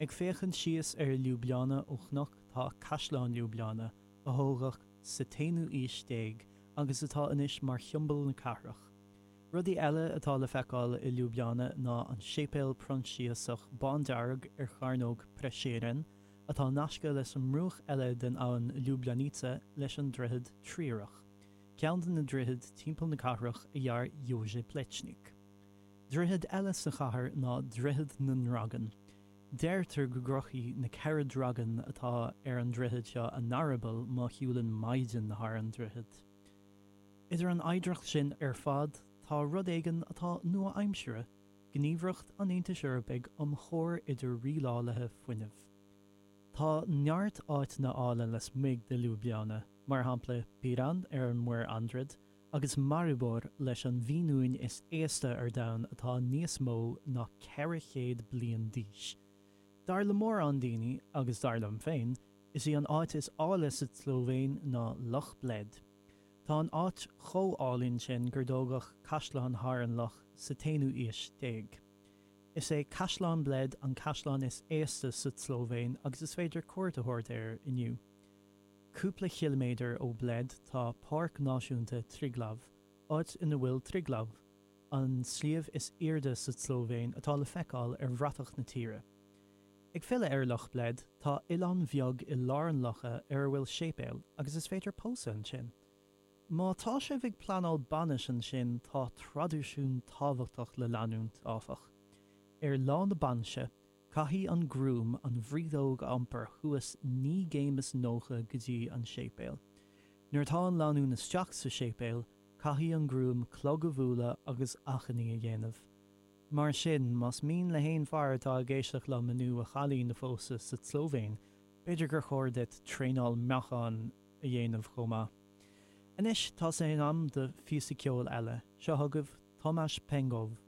Ag féachaint síos ar Ljubljana ó chnoc tá Caisleán Ljubljana, a thógadh sa t-aonú aois déag agus atá anois mar shiombail na cathrach. Rudaí eile atá le feiceáil i Ljubljana ná an séipéal Proinsiasach bándearg ar chearnóg Prešeren, atá nasctha leis an mbruach eile den abhainn Ljubljanica leis an droichead triarach, ceann de na droichid timpeall na cathrach a dhear Jože Plečnik. Droichead eile sa chathair ná Droichead na nDragan. Deirtear go gcroithfidh na ceithre dragan atá ar an droichead seo a n-eireaball má shiúlann maighdean thar an droichead. Idir an oidhreacht sin ar fad tá rud éigin atá nua-aimseartha, Gníomhaireacht an Aontais Eorpaigh um Chomhar idir Rialálaithe Fuinnimh. Tá neart áiteanna áille lasmuigh de Ljubljana, mar shampla Piran ar an Muir Aidriad, agus Maribor leis an bhfíniúin is aosta ar domhan atá níos mó ná 400 bliain d'aois. Dar le mórán daoine, agus dar liom féin, is í an áit is áille sa tSlóivéin ná Loch Bled. Tá an áit chomh álainn sin gur dtógadh caisleán thar an loch sa t-aonú aois déag. Is é Caisleán Bled an caisleán is aosta sa tSlóivéin agus is féidir cuairt a thabhairt air inniu. Cúpla chiliméadar ó Bled tá Páirc Náisiúnta Triglav, áit ina bhfuil Triglav, an sliabh is airde sa tSlóivéin atá le feiceáil ar bhratach na tíre. Ag filleadh ar Loch Bled, tá oileán bheag i lár an locha ar a bhfuil séipéal agus is féidir pósadh ansin. Má tá sibh ag pleanáil bainis ansin tá traidisiún tábhachtach le leanúint, áfach. Ar lá na bainse, Caithfidh an Groom an bhrídeog a iompar suas naoi gcéim is nócha go dtí an séipéal. Nuair atá an lánúin isteach sa séipéal, caithfidh an Groom clog a bhualadh agus achainí a dhéanamh. Mar sin, más mian le haon fear atá ag éisteacht liom inniu a chailín a phósadh sa tSlóivéin, b'fhéidir gur chóir duit traenáil meacháin a dhéanamh chomh maith. Anois, tá sé in am do phíosa ceoil eile. Seo chugaibh Tomaž Pengov